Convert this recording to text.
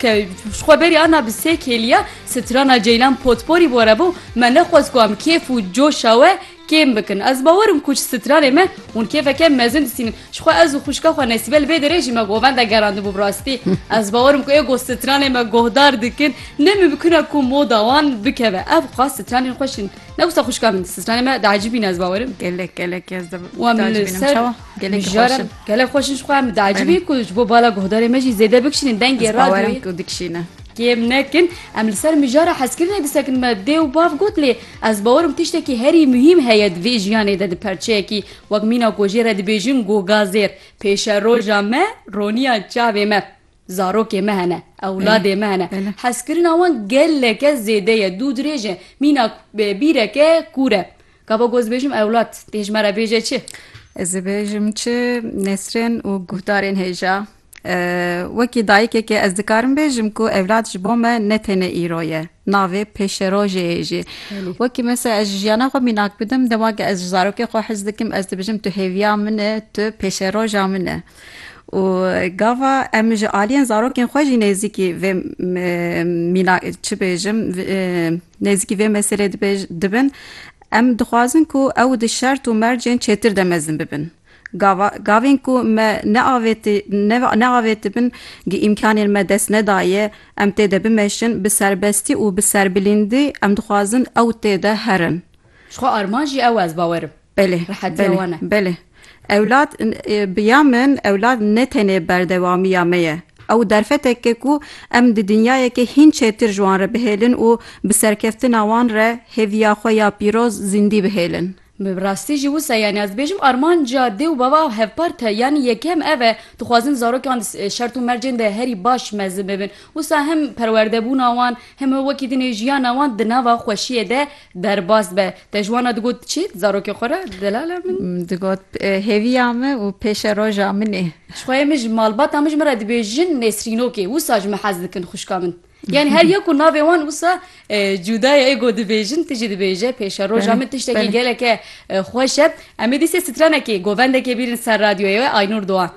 Ke ji xwe berî ana bi sê kêliya strana Ceylan Potporî bore bo, me nexwest ku em kêf û coşa we kêm bikin. Ez bawer im ku ji stranê me hûn kêfeke mezin disînin. Ji xwe ez û xwişka xwe Nesîbe li vê derê jî me govende gerandibû. Bi rastî ez bawer im ku ê goh stranê me gohdar dikin. Ne mimkun e ku moda wan bikeve. Ev xwest stranên xweş in. Ne wisa xwişka min. Stranê me diecibîne ez bawer im. Gelek gelek ez de diacibînim. Çawa? Gelek Mijar xweş e. Gelek xweş in ji xwe em diacibî ku ji bo bala guhdarê me jî zêde bikişînin dengê radyoyê. Ku dikişîne. Kêm nekin em li ser mijara hezkirinê disekin me dê û bav got lê ez bawerim tiştekî herî muhîm heye di vê jiyanê de di perçeyekî wek mîna ku jê re dibêjin gogazêr pêşeroja me roniya çavê me Zarokê me hene, ewladê me hene. Hezkirina wan geleke zêde ye, dû dirêj e. Mîna bîreke kûr e. Gava ku ez dibêjim ewlad, tê ji me re bêje çi? Ez dibêjim çi nesrên û guhdarên hêja. Wekî dayikekê ez dikarim bêjim ku ewlad ji bo me ne tenê îro ye, navê pêşerojê ye jî. Wekî mesela ez ji jiyana xwe mînak bidim, dema ku ez ji zarokê xwe hez dikim, ez dibêjim tu hêviya min î, tu pêşeroja min î. Û gava em ji aliyên zarokên xwe jî nêzîkî vê mîna çi bêjim nêzîkî vê meselê dibin. Em dixwazin ku ew di şert û mercên çêtir de mezin bibin. Gava gavên ku me neavêti neavêtibin gi îmkanên me dest nedaye em tê de bimeşin bi serbestî û bi serbilîndî em dixwazin ew tê de herin. Ji xwe armanc jî ew e ez bawerim. Belê, belê, belê. Ewlad bi ya min ewlad ne tenê berdewamiya me ye. Ew derfetek e ku em di dinyayekê hîn çêtir ji wan re bihêlin û bi serkeftina wan re hêviya xwe ya pîroz zîndî bihêlin. Bi rastî jî wisa yanî ez dibêjim armanca dê û bava hevpar tê. Yanî yekem ev e, dixwazin zarokan di şert û mercên de herî baş mezin bibin. Wisa hem perwerdebûna wan hem wekî din ê jiyana wan di nava xweşiyê de Derbas be, te ji wan re digot çi di zarokê xwe re? Delala min. Digot hêviya min û pêşe roja min ê. Jixweyê min ji malbata min ji min re dibêjin Nesrînokê, wisa ji min hez dikin xwişka min. Yanî her yek û navê wan wisa cuda ye, êgo dibêjin, tu jî dibêje pêşe roja min tiştekî geleke xweş e. Em ê dîsê stranekê, govendekê bîrin ser radyoyê we, Aynûr Doğan.